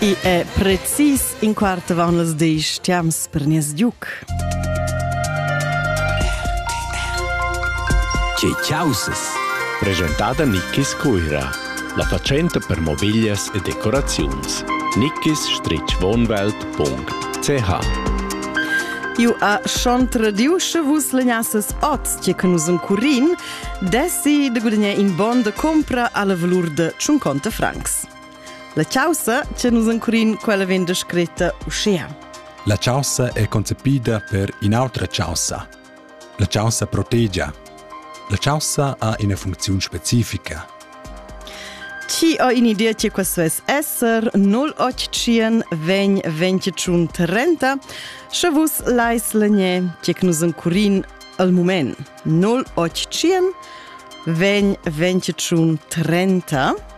I è precis in quart avant las disch tiams per nies giuc. Tge causes? Presentada Nickis Cuira, la fatschenta per mobiglias e decoraziuns. nickis-wohnwelt.ch Iu a schon tradiu sche vus legnasses oz che nus un curin, dessi de gudagnare in bon de compra alla valur de 50 francs. La chaussa che nus encurin quella vegn descritta uschia. La chaussa è concepida per in'autra chaussa. La chaussa protegia. La chaussa ha ina funcziun specifica. Chi ho un'idea che questo es esser 0800 vegn 21 30, sche vus lais legne che nus encurin al moment 0800 vegn 21 30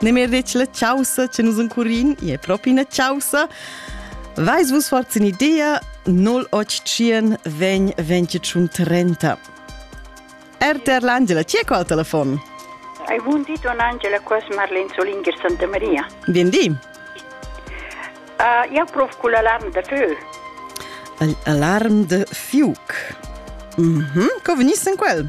Ne mi detg la chaussa che nus encurin, e propi una chaussa. Vais vus forza in idea 081 vegn 21 30. RTR l'Angela, chi è qua al telefon? Hai buon dì, donna Angela, qua è Marlene in Santa Maria. Bien dì. Uh, io provo con l'allarme da feu. Allarme de fiuc. Mhm, mm co venissen quel?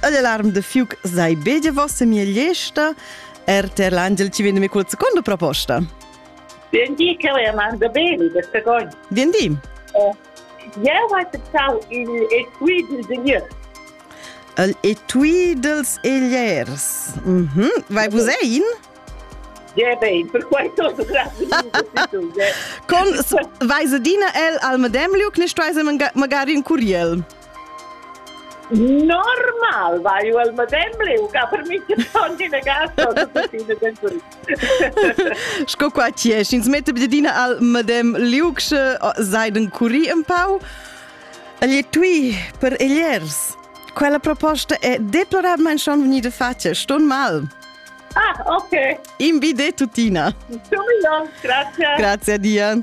L'alarm de fiuc sei bede vossa mia liesta, er ter l'angel ci vende me col secondo proposta. Vien di che è man de beni de segon. Vien di. Eh, ja was tau il etuit del Seigneur. El etui dels eliers. Mhm. Mm Vai vous ein? Ja, bene, per questo sono grazie. Con weise dina el al medem luc, ne stueise magari un curiel. Normal va ju al madem liu ca per mi che ton ina gasta o ina denturin. Sco qua ti es, ins mette bedina al madem liu che sai den curi un pau. El è tui per eliers. Quella proposta è deploradamente schon venida fatta, ston mal. Ah, ok. Invide tutina. Tu mio, grazie. Grazie a Dio.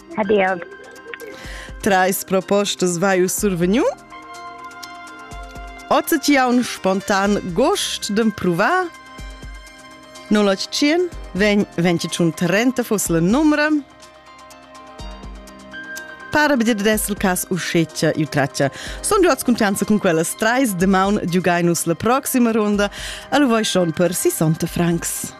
Adeag. Trais propostas vai u survegnu? Oze ti un spontan gost d'empruvar? 081 25 30 fosse il numero para bedir d'esser il cas usceccia e traccia. Sono già confianza con quelles treis de maun giugai nus la prossima ronda al voi schon per 60 francs.